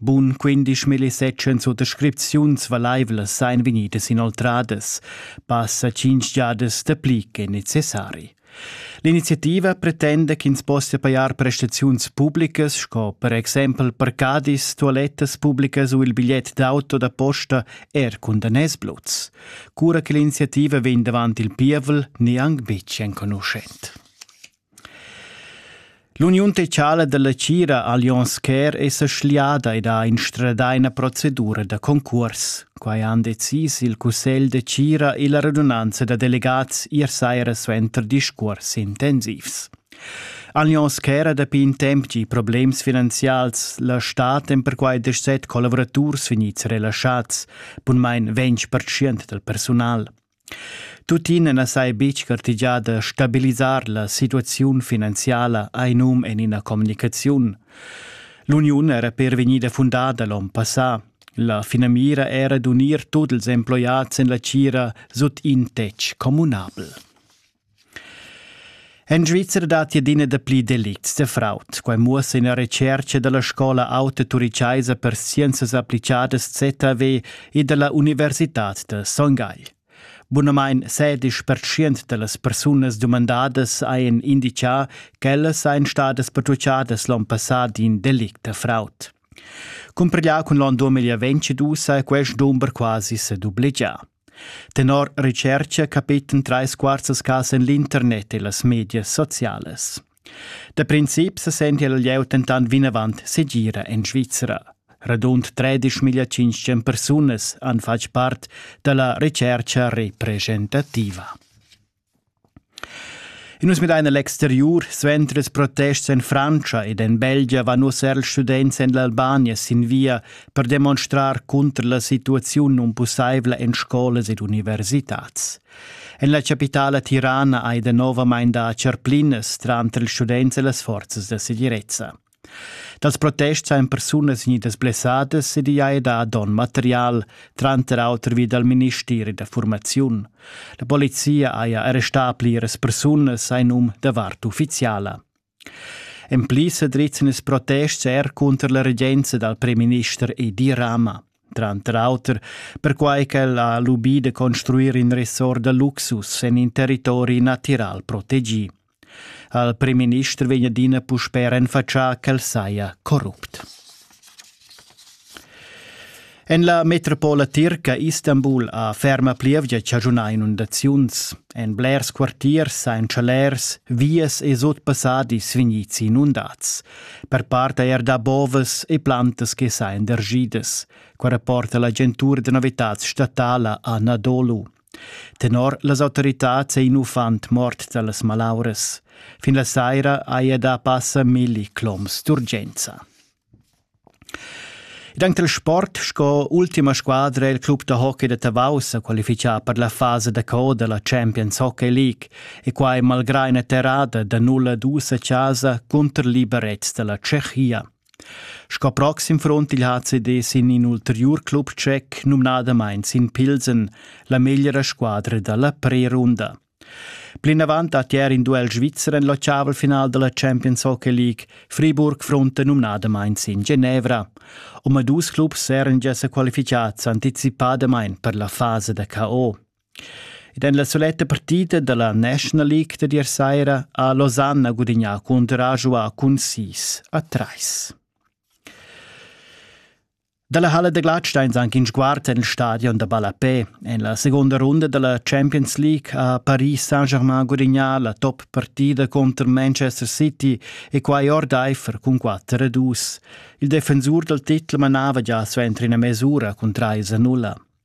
Bun quindisch millisettschens u descripziuns valaivlas sain vegnidas inoltradas, passa tschinch jadas dapli che necessari. L'iniziativa pretenda ch'ins possia pajar prestaziuns publicas sco per exempel parcadis, tualettas publicas u il bigliet d'auto da posta er cun daners bluts. Cura che l'iniziativa vegn davant il pievel, neanc betg enconuschent. L'uniun tetschala dalla tgira Allianz Care è sa schliada ed ha instradà ina procedura da concuors. Quai han decis il cussegl de tgira e la radunanza da delegats ier saira suenter discuors intensivs. Allianz Care ha dapi in temp gì problems finanzials. La stat èn perquai deset collavuraturs vegnids relaschats, bunmain ventg percent dal personal. Tuttina na sai betg gartegià da stabilisar la situaziun finanziala ha num en ina communicaziun. L'uniun era per vegnida fundada l'onn passà. La finamira era d'unir tut ils emploiads en la tgira sut in tetg communabel. En Svizra datti adina dapli delicts da fraud. Quai muossa ina retscherca da la scola auta turichaisa per scienzas applicadas ZAW e da la Universitad da Son Gagl. Bunamain sedisch pertschient da las persunas dumandadas hajan indicà ch'ellas sajan stadas patrucciadas l'onn passà d'in delict da fraud. Cumpriglià cun l'onn 2022 è quest dumber quasi sa dublegià. Tenor retschercha capiten trais quarzas cas en l'internet e las medias socialas. Da princip sa senti il lieu dentant vinavant segira en Svizra. Radund 13.500 persunas han fatg part da la retschercha representativa. In nus midain l'exteriur, suenter ils protests en Frantscha ed en Belgia van nus er ils students en l'Albania sin via per demonstrar cunter la situaziun nunpussaivla en scolas ed universitads. En la chapitala tirana hai danovamain dà charplinas tranter ils students e las forzas da segirezza. Dals protests ein persunas gnidas blessadas ed igl ei dà donn material, tranter auter vi dal ministeri da formaziun. La polizia haja arrestà pliras persunas ein um da vart ufficiala. En pli sa drizzan ils protests er cunter la regenza dal premierminister Edi Rama. Tranter auter perquai ch'el ha lubì da construir in ressort da luxus en in territori natiral protegì. Al primminister vegn adina puspè renfatschà ch'el saja corrupt. En la metropola tirca Istanbul ha ferma plievgia chaschunà inundaziuns. En blers quartiers sain chalers, vias e sutpassadis vegnids inundads. Per part er da bovas e plantas che sain dergidas, qua rapporta l'agentura da novitads statala Anadolu. Tenor las autoritads è in uffant mort da las malauras. Fin la saira haja dà passa milli cloms d'urgenza. Dank del sport sco ultima squadra il club da hockey da Tavau sa qualifichà per la fasa da coda la Champions Hockey League e quai malgrà ina terrada da 0-2 a casa cunter liberets da la Tschechia. Sco proxim front il HCD sin in ulteriur club tschec, numnadamain sin Pilsen, la meglra squadra da la prerunda. Plinavant dat ier in duel svizzer en l'ottavel-final da la Champions Hockey League. Friburg fronta numnadamain sin Genevra. Omadus clubs eran gia sa qualificads anticipadamain per la fasa da KO. Ed en la suletta partida dalla National League da ier saira ha Losanna gudignà cun enturage u cun sis a trais. Dalla Halle da Gladsteins anc in sguard en il stadion da Ballapè. En la seconda runda dalla Champions League ha Paris Saint-Germain gudignà la top partida contro Manchester City e quai ordaifer cun 4 a 2. Il defensur dal titel manava gia suenter ina mesura cun 3 a 0.